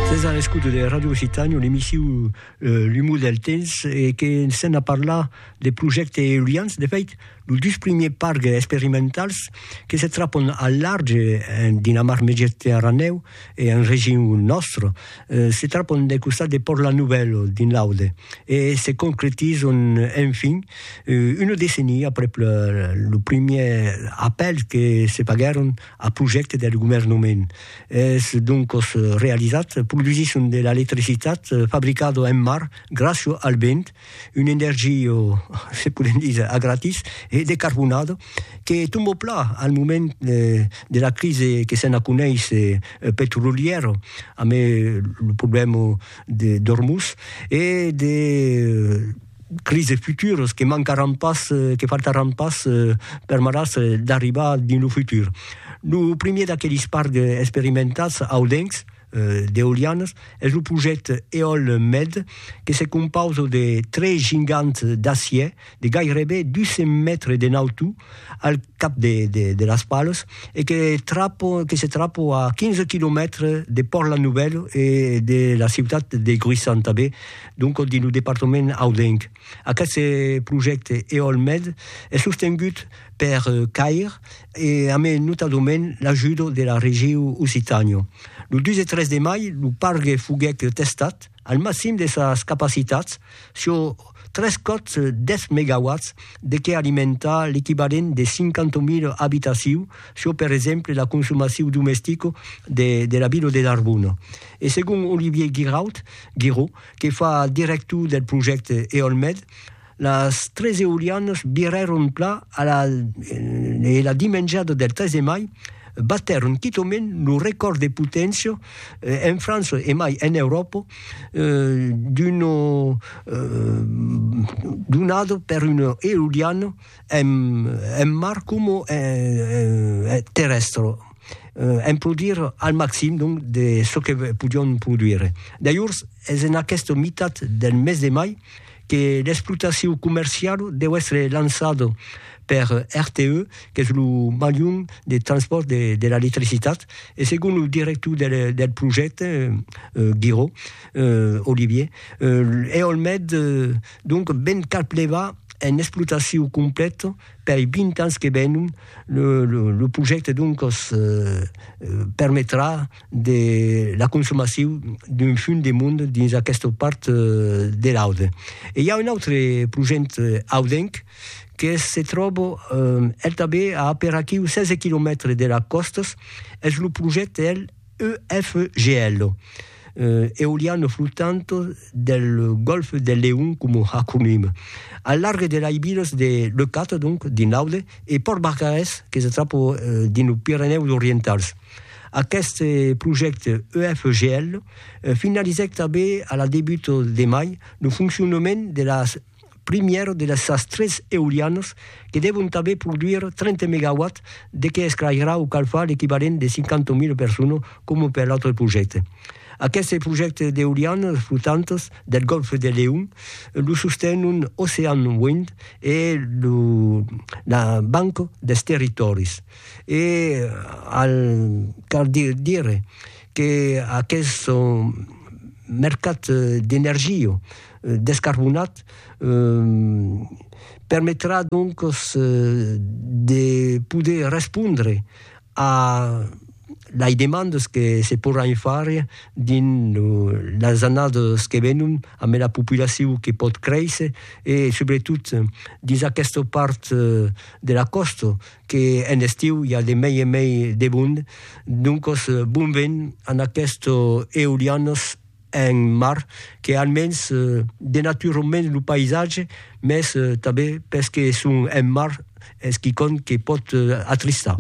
Sètz a l'escouta de Radio Occitània, l'emissiu L'umor del temps, e que s'en a parlar de projècte eolians. De fèit, los dus primiers parcs experimentals que se trapon al large en Dinamar Mediterranèu e en region nòstra, se trapon del costat de Pòrt La Nouvèla, dins l'Aude, e se concretizon enfin una decenia aprèp lo primièr apèl que se faguèron Ath projècte deth govèrnament es doncos realizat produsisson de l'electricitat fabricado en mar gràcio al vent, un energio, se podem díser, a gratis e decarbonado que tombo pla al moment de la crise que se n'a coneis petrolièro amé lo problèmo d'Ormuz e de crises futuras que mancaràn pas, que faltaràn pas permetàs d'arribar dins lo futur. Lo primièr d'aquelis parcs experimentats audencs d'eolianas es lo projècte Eolmed que se compausa de tres gigants d'acièr de gairebe 200 mètres de nautor al cap de las palas e que trapa, que se trapa a 15 quilomètres de Pòrt-la-Novèla e de la ciutat de Gruissan tanben. Doncòs dins lo departament audenc. Aqueste projècte EOLMed es sostengut per CAIR e a mai notadament l'ajudo de la Regiu Occitània. Lo 2 e 3 de mai lo pargue foguèt testat al maxim de sas capacitats sur tres còps 10 megawatts de qué alimentar l'equivalent de 50.000 abitaciu sur per exemple la consomaciu domestica de la vila de Narbona. E segon Olivier Giraud, Guiraud, que fa director del projècte Eolmed, las tres eolianas virèron pla a la e la dimenjada del 3 de mai batèron quitament lo recòrd de poténcia en França e mai en Euròpa d'una donada per una eoliana en mar coma en terrèstre, en produir al maxim donc de çò que podion produire. Dajors es en aquesta mitat del mes de mai que l'explotacion comerciala deu èstre lançada per RTE, qu'es lo malhum de transpòrt de l'electricitat, e segon lo director del projècte, Giraud, Olivier, Eolmed, Donc ben cal plevar en explotacion complète pei 20 ans que venon, le, le, le projècte donc permetrà de la consomacion d'un fum de monde dins aquesta part de l'Aude. E i a un autre projèct audenc que se tròba el tanben a aperaquiu 16 quilomètres de las còstas, es lo projècte el EFGL, Eoliano flottanto del golfe del Leon como acronime, al large de lei vilas de Leucate, donc, dins l'Aude, e Pòrt Barcarès, que se tròba dins los Pirenèus Orientals. Aqueste projècte EFGL finalizèc tanben a la debuta de mai lo foncionament de las primièr de las sas tres eolianas que devon tanben produir 30 megawatts de que esclairà o calfar l'equivalent de 50.000 personas coma per l'autre projècte. Aqueste projècte d'eolianas flotantas del Gòlf de Leon lo sostenon Ocean Wind e la Banca dels Territòris e al cal dire que aqueste mercat d'energia descarbonat permetrà doncas de poder respondre a lei demandas que se porràn far dins las annadas que venon amb la populacion que pòt créisser e subretot dins aquesta part de la còsta que en estiu i a de mei en mei de mond. Doncas bon vent a aquestas eolianas. un mar que almens denatura un mens lo païsatge, mès tanben perque es un mar es quicòm que pòt atristar.